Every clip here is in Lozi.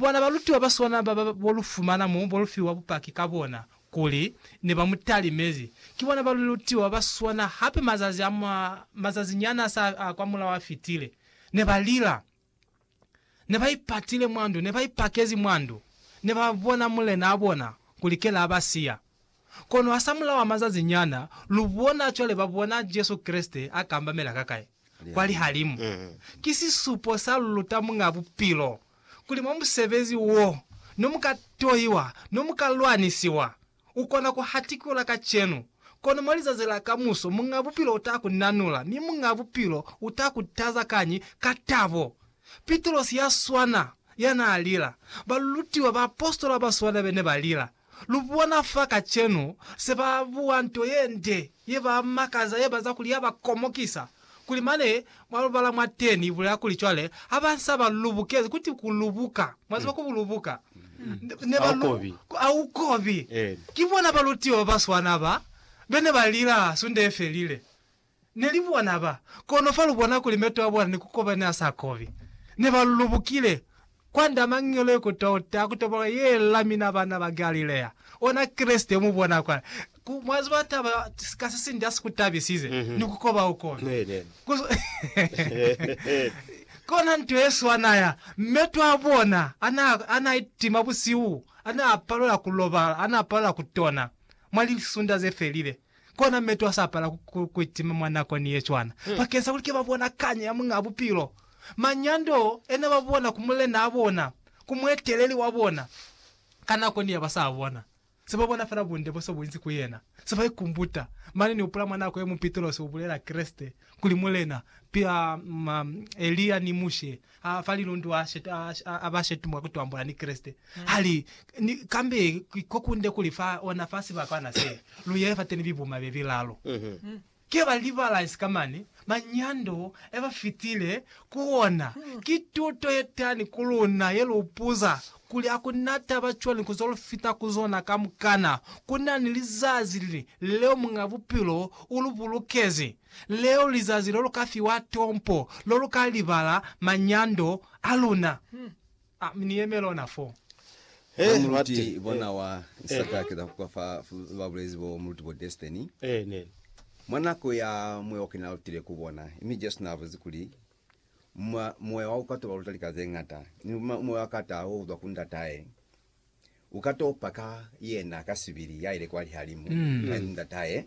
Bona balutiwa ba sona ba ba bo lu fumana mo bo lu fiwa bupaki ka bona, kuli, ne ba mu talimezi. Ki bona balutiwa ba sona hape mazazi a mwa, mazazi nyana sa a kwa mulaho a fitile. Ne ba lila. Ne ba ipatile mwa ndu, ne ba ipakezi mwa ndu, ne ba bona mulena a bona, kuli kela a ba siya. Kono hasamulaho a mazazi nyana, lu bona cwale ba bona Jesu Kreste a kambamela ka kai? Kwa lihalimu. Ki sisupo sa lu luta Muñaa Bupilo, kuli mwa musebezi wo, no mu ka toiwa, no mu ka lwanisiwa. U kona ku hatikula kacenu, kono mwa lizazi la kamuso Muñaa Bupilo u ta ku nanula, mi Muñaa Bupilo u ta ku taza kañi? Ka tabo. Pitrosi ya swana, ya naa lila. Balutiwa, baapositola ba swana be ne ba lila. Lu bona fa kacenu se ba bua nto ye nde, ye ba makaza, ye ba za kuli ya ba komokisa, kuli mane mwa lu bala mwateni i bulela kuli cwale ha ba sa ba lubukezi, ku ti ku lubuka, mwa ziba ku lubuka, ne ba lu, a u kobi. Ki bona balutiwa ba ba swana ba be ne ba lila Sunde ye felile. Ne li bona ba kono fa lu bona kuli meto a bona ni ku koba ne a sa kobi. Ne ba lulubukile kwa nda mangelo ye ku touta ku toboloka ye la mina bana ba Galilea, ona Kreste yo mu bona kwa. Ku, mwa ziba taba ka se sinde ya si ku tabisize, ni ku koba u kobi. Ku, kona nto ye swana ya meto a bona a na, a na itima busihu, a na palela ku lobala, a na palela ku tona mwa lisunda ze felile. Kona metu a sapala ku itima mwa nakoni ye cwana, bakeng sa kuli ke ba bona kanya ya Muñaa Bupilo. Manyando ena ba bona ku mulenaa bona, ku mueteleli wa bona, ka nakoni ya ba sa bona. Se ba bona fela bunde bo se bu inzi ku yena, se ba ikumbuta. Mane ni upula mwa nako ye mu Pitrosi u bulela Kreste kuli Mulena, pia Elia ni Mushe a fa lilundu a, shet, a, a ba shetumwa ku twambula ni Kreste. Ha li, ni, kambe ko kunde kuli fa ona fa sibakwana se, lu yele fateni bibuma be bilalu. Ke ba libala sika mane, manyando e ba fitile ku ona. Ki tuto ye tani ku luna ye lu puza kuli ha ku na taba cwani ku zo lu fita ku zona kamukana, ku na ni lizazi leo Muñ'a Bupilo u lu bulukezi. Leo lizazi lo lu ka fiwa tompo lo lu ka libala manyando a luna. A mi ni yeme lona fo. He muluti Mate. bona wa Isaka a keza ku kwa fa ba bulezi bo muluti bo Destiny. Ee, neni. Mwa nako ya mueoki na lutile ku bona, mi Jesu na buzi kuli, Mwa, Muoya wa ku katoba luta lika ze ñata, ni mwa, Muoya wa kataho uzwa ku Ndatahe. U ka topa ka yena ka sibili ya ile kwa lihalimu ka ndatahe,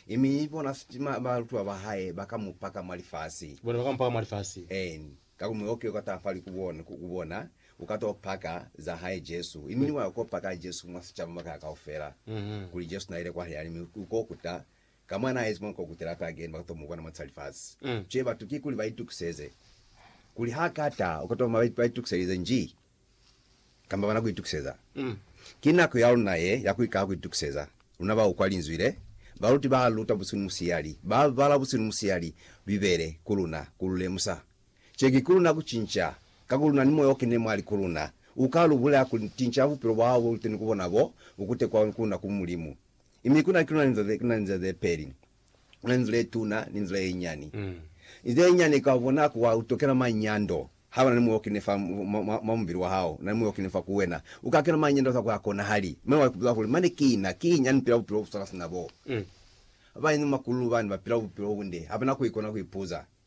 mi bona balutwa ba hae ba ka mu paka mwa lifasi. Bona ba ka mu paka mwa lifasi. Een, ka ku muyoke u ka taha fali ku bona, u ka to paka za hae Jesu. Mi wa ko paka Jesu mwa sicaba makaha kaufela, kuli Jesu na ile kwa lihalimu. U ko kuta ka mwa na ezi mwa ko kutela hape again, ba ka to mu bona mwa sa lifasi. Cwale batu kikuli ba itukiseze kuli ha ka ta, u ka toma ba itukiselize nji? kamba bana kuitukiseza. Ki nako yaluna ye ya kuikala kuitukiseza. Luna baukwa Linzwi le, baluti ba luta busilu ni musiyali, ba bala busilu ni musiyali Bibele ku luna, ku lu lemusa. Ki ki kuluna kucinca, ka ku luna ni Moya o Kenile mwali ku luna, uka lu bulela kuli, Tinca bupilo bwa hao bo luteni ku bona bo bu kutekwa ku luna ku Mulimu. Mi kuna, kuna linza ze, kuna linza ze peli, Kona nzila ye tuna ni nzila ye nyani. Nzila ye nyani ka bonako wa utokela manyando. Ha bana ni muya o kenile fa mwa mubili wa hao, na ni muya o kenile fa ku wena, u ka kena manyando ka ku ha konahali. Mane wa ikuza kuli, Mane ki na, ki nyani pila bupilo bu swana sina bo. Ba bañwi ni makululu bani ba pila bupilo bunde, ha bana ku ikona ku ipuza.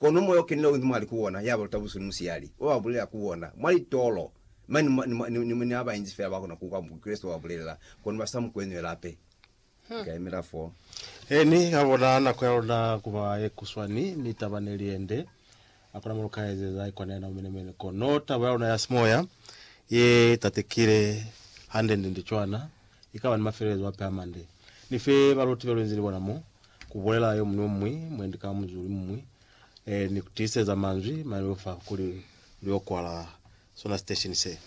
Kono Moya o Kenile uinzi mwali ku bona, ya ba luta busihu ni musiyali, wa ba bulelela ku bona, mwa litolo, mane ni mwa, ni ha ba inzi fela ba kona ku kwa Mukreste wa ba bulelela, kono ba sa mu kweñwe lape. Ni ka yemela fo. He Ni ka bona nako ya luna ku ba ye kuswani, mi taba ne li yende. Hakuna mo lu ka ezeza i kwana yena u menemene. Kono taba ya luna ya simoya ye tatekile hande-nde-nde cwana. ikaba ni mafelelezo ape a mande. Nife baluti belu inzi ni bona mo, kubulela yomuñwi ni yomuñwi mwendi ka muzulu imuñwi, eh, ni kutiiseza manzwi mane leo fa kuli luyo kwala sona sitesheni se.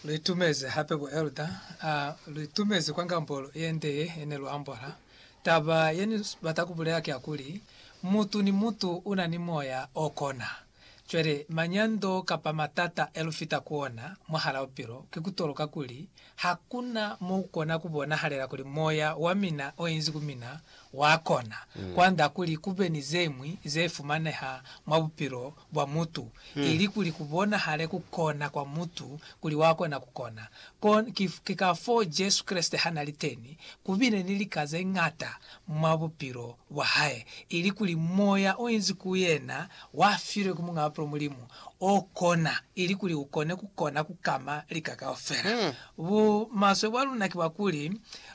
Luitumezi hape bo elder, a luitumezi kwa ngambolo yende ye ne lu ambola. Taba ye ni bata kubulela ki ya kuli, mutu ni mutu una ni moya o kona. Cwale, manyando kapa matata elufita ku ona mwahala bupilo, kikutoloka kuli, hakuna moukona kubonahalela kuli moya wamina oinzi ku mina wakona kuanda kuli kube ni zeñwi zeifumaneha mwa bupilo bwa mutu, ili kuli kubonahale kukona kwa mutu kuli wakona kukona. Kon, ki, ki kafoo Jesu Kreste hanali teni, kubile ni lika zeñata mwa bupilo bwa hae, ili kuli moya o inzi ku yena wa filwe ku Muñ'a Bapilo Mulimu o kona, ili kuli u kone ku kona ku kama lika kaufela. Bu maswe bwa luna ki bwa kuli,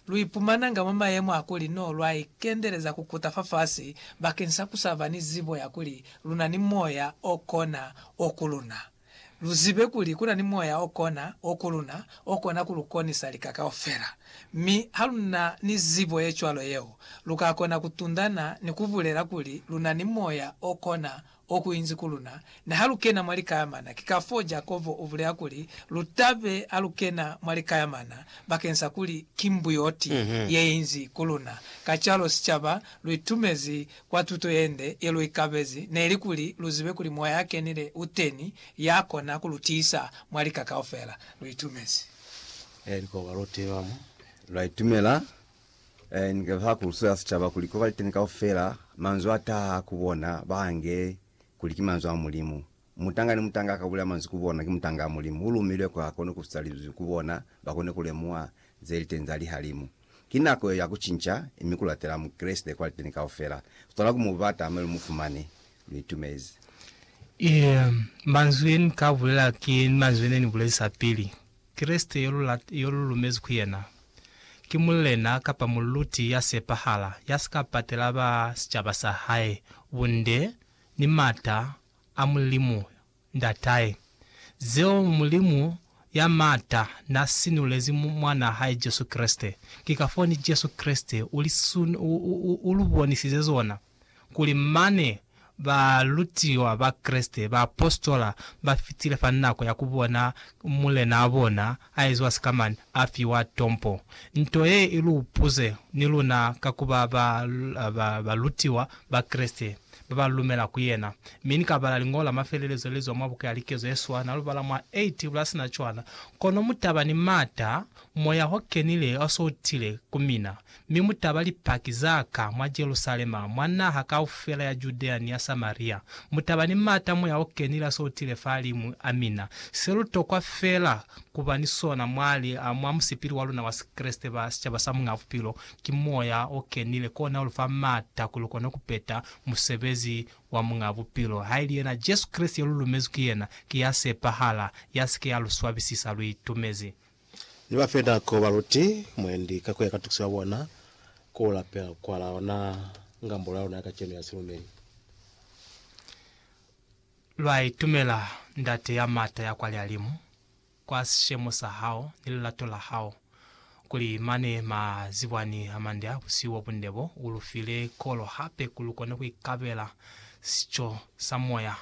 lu ipumananga mwa mayemo a kuli no lwa ikendeleza ku kuta fafasi bakeni sa ku sa ba ni zibo ya kuli lu na ni moya o kona o ku luna. Lu zibe kuli ku na ni moya o kona o ku luna, o kona ku lu konisa lika kaufela. Mi ha lu na ni zibo ye cwalo yeo, lu ka kona ku tundana ni ku bulela kuli lu na ni moya o kona o ku inzi ku luna, niha lu kena mwa likayamana. Ki kafoo Jakobo u bulela kuli, Lu ta be ha lu kena mwa likayamana, bakeng sa kuli ki mbuyoti ye inzi ku luna. Kacwalo sicaba lu itumezi Kwa tuto yende yeluikabezi neli kuli luzibe kuli Moya yakenile uteni yakona kulutiisa mwa lika kaufela. Luitumezi. Eli ko baluti bamu, lwaitumela ni ka ha kuluso ya sicaba kuli ko baliteni kaufela, manzwi ataha ku bona baange kuli ki manzwi a Mulimu. Mutanga ni mutanga ka bulela manzwi ku bona, ki mutanga wa Mulimu. U lumilwe kuli a kone ku susa linzwi ku bona, ba kone ku lemuha ze li teni za lihalimu. Ki nako yeo ya ku cinca, mi ku latela Mukreste kwa liteni kaufela. Lu tokwa ku mu bata, mi lu mu fumane. Lu itumezi. Eya, manzwi ye ni ka bulela ki manzwi ye ne ni bulezisa pili. Kreste yo lu lata, yo lu lumezi ku yena, ki Mulena kapa Muluti ya sepahala, ya si ka patela ba sicaba sa hae bunde, ni mata, a Mulimu Ndatahe, zeo Mulimu ya Maata na sinulezi Mwanaa hae Jesu Kreste. Ki kafoo ni Jesu Kreste u li u lu bonisize zona, kuli mane balutiwa ba Kreste, baapositola, ba fitile fa nako ya ku bona Mulenaa bona A ezwa sikamani, a fiwa tompo. Nto ye i lu puze ni luna ka ku ba balutiwa ba Kreste ba ba lumela ku yena. Mi ni ka bala liñolo la mafelelezo le zwa mwa buka ya Likezo ye Swa, na lu bala mwa A Tibula ya Sina Cwana, Kono mu taba ni m'ata, Moya o Kenile o s'o tile ku mina, Mi mu taba Lipaki za Ka mwa Jerusalema, mwa naha kaufela ya Judea ni ya Samaria. Mu taba ni m'ata Moya o Kenile a sotile fahalimu a mina. Se lu tokwa fela ku ba ni sona mwa li, mwa musipili wa luna wa Sikreste ba sicaba sa Muñaa Bupilo, ki Moya o Kenile. Kona u lu fa m'ata kuli lu kone ku peta musebezi wa Muñaa Bupilo. Haili yena Jesu Kreste yo lu lumezwi ki yena, ki ya sepahala, ya si ke ya lu swabisisa, lu itumezi. Ni ba fe nako ba lute mwendi ka ku ya ka tukiso ya bona ku lapela kwa la ona ngambolo ya luna ya kacenu ya silumeli. Lwa itumela, Ndate ya m'ata ya kwa lialimu, kwa sishemo sa hao ni lilato la hao, kuli mane ma zibwani a mande a busihu bo bunde bo, u lu file kolo hape ku lu kone ku ikabela sico sa moya.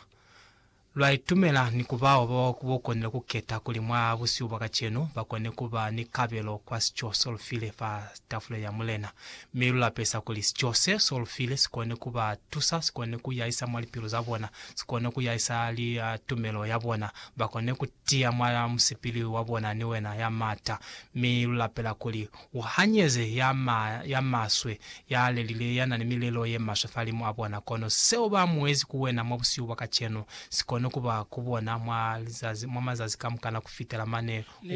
Lwa itumela ni ku ba bao ba bo konile ku keta kuli mwa busihu bwa kacenu ba kone ku ba ni kabelo kwa sico so lu file fa tafuleni ya Mulena. Mi lu lapesa kuli sico se so lu file si kone ku ba tusa, si kone ku yahisa mwa lipilu za bona, si kone ku yahisa tumelo ya bona, ba kone ku tiya mwa musipili wa bona ni wena ya m'ata. Mi lu lapela kuli U hanyeze ya ma, ya maswe, ya lelile, ya na ni milelo ye maswe falimu a bona, kono seo ba muezi ku wena mwa busihu bwa kacenu, si koni kuba ku bona mwa lizazi, mwa mazazi kamukana kufitela mane u.